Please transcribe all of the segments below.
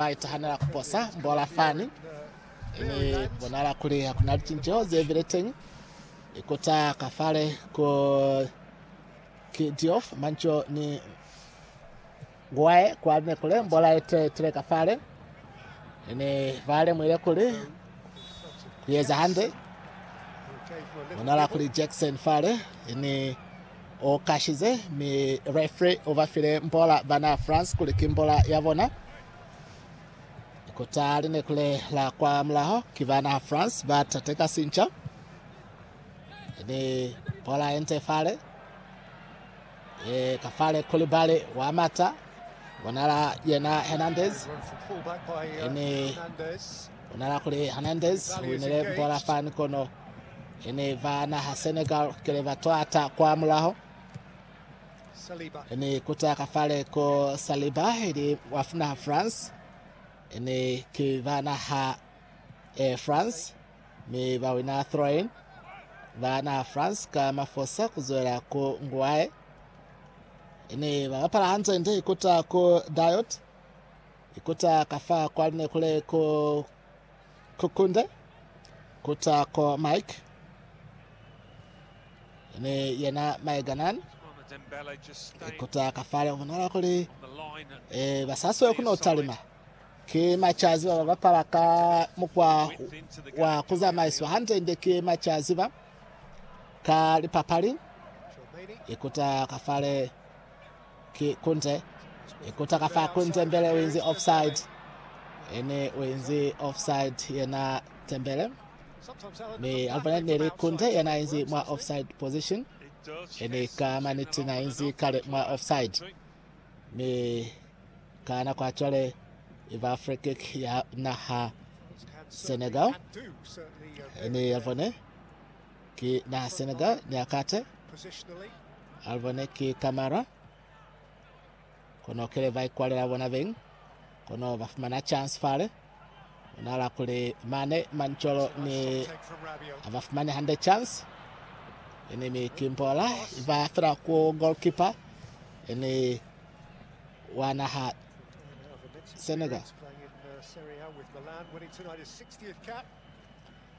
Ba itahanela ku posa mbola fani ne bonala kuli ha ku na licinceho ze bile teñi. Ikuta ka fale ku Kidiof, Manco ni Nguae kwa ne kule mbola ye te tile ka fale ne ba lemuhile kuli ku eza hande. Bonala kuli Jackson fale ni U kashize, mi referee u ba file mbola bana France kuli ki mbola ya bona. Kuta li ne ku lela kwa mulaho, ki bana France ba tateka sinca. Ni bola ye nte fale. E ka fale Koulibaly wa mata. Bonala yena Hernandez. Ni Ku na la kuli Hernandez u winile bola fani kono i ni ba naha Senegal kile ba twata kwa mulaho. I ni kuta ka fale ko Saliba ili wa naha France. I ni ki ba naha eh, France mi ba wina throw-in. Ba naha France ka mafosa ku zwela ku nguae. I ni ba bapala hanze ndi kuta ku Diot. Ikuta ka fa kwa lune kule ku kukunde kuta ko Mike ni yena Maeganan ikuta ka fale umonala kuli e basaswe kuno talima ke machazi ba bapala ka mukwa wa kuzamaiswa hande nde ke machazi ba ka lipapali ikuta ka fale Ki kunze e kuta ka fa kunze Mbele u inzi offside ene u inzi offside yena Tembele mi Alvanet ne li kunze yena a inzi mwa offside position ene ka maniti na inzi kale mwa offside mi ka nako ya cwale i ba free kick ya naha Senegal ene Alvanet ki naha Senegal Niakate alibone ki Kamara kono kele ba ikwalela bona beng kono ba fumana chance fale onala kuli mane mancholo ni abafumane hande chance ene mi kimbola iba fela ku goalkeeper ene wa naha Senegal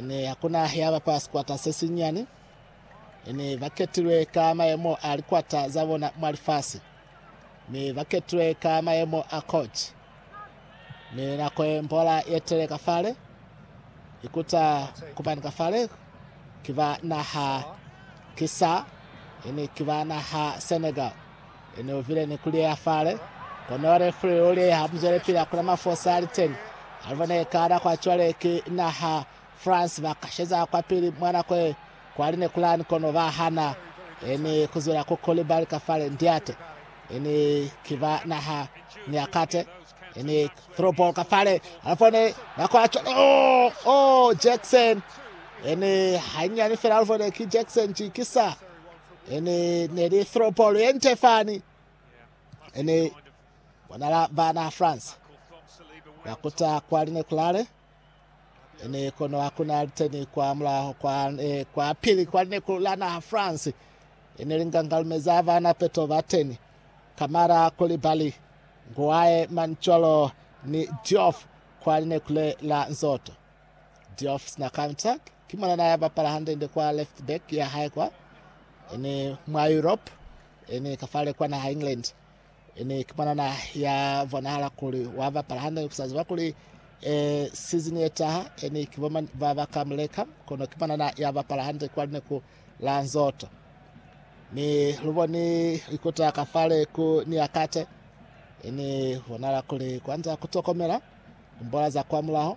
Ne ya kuna ya bapa sikwata se sinyani. Ne ba ketilwe ka mayemo a likwata za bona mwa lifasi. Ne ba ketilwe ka mayemo a koci. Ne nako ye mbola ye tele ka fale, ikuta kubani ka fale ki ba naha ki sa, ne ki ba naha Senegal. Ene uvile ni kuliyeha fale, kono Refri uliyeha muzwelepili akula mafosa aliteni. Alibona eka nakwa cwale ki naha France bakasheza kwapili mwa nako ye kwali nekulani kono bahana eni kuzwela ku Koulibaly ka fale ndiate. Eni kiba naha Niakate, eni through ball ka fale, alibone nakwa cwale oh oh Jackson eni hanyani fela alibone ki Jackson jikisa. Ene ne li throw ball ye nte fani. Ene bonala bana France bakuta kwa linekulale. Ene kono hakuna liteni kwa mulaho kwa, e, kwa pili kwa lineku la naha France. Ene lingangalumeza bana peto bateni. Kamara Kulibali, Nguaye Mancholo ni Diouf kwa linekule la Nzoto. Diouf sina counter. Ki mwana na bapala hande-nde kwa left back ya hae kwa, ene mwa Europe, ene ka fale kwa naha England. Ene ki mwana na ya bonahala kuli wa bapala hande, ku sa ziba kuli eh, season ye taha ene ki bomani ba ba ka muleka, kono ki mwana na ya bapala hande kwa lineku la Nzoto. Ni lu boni ikota ka fale ku Niakate, ene bonahala kuli kwanza ku tokomela mbola za kwa mulaho.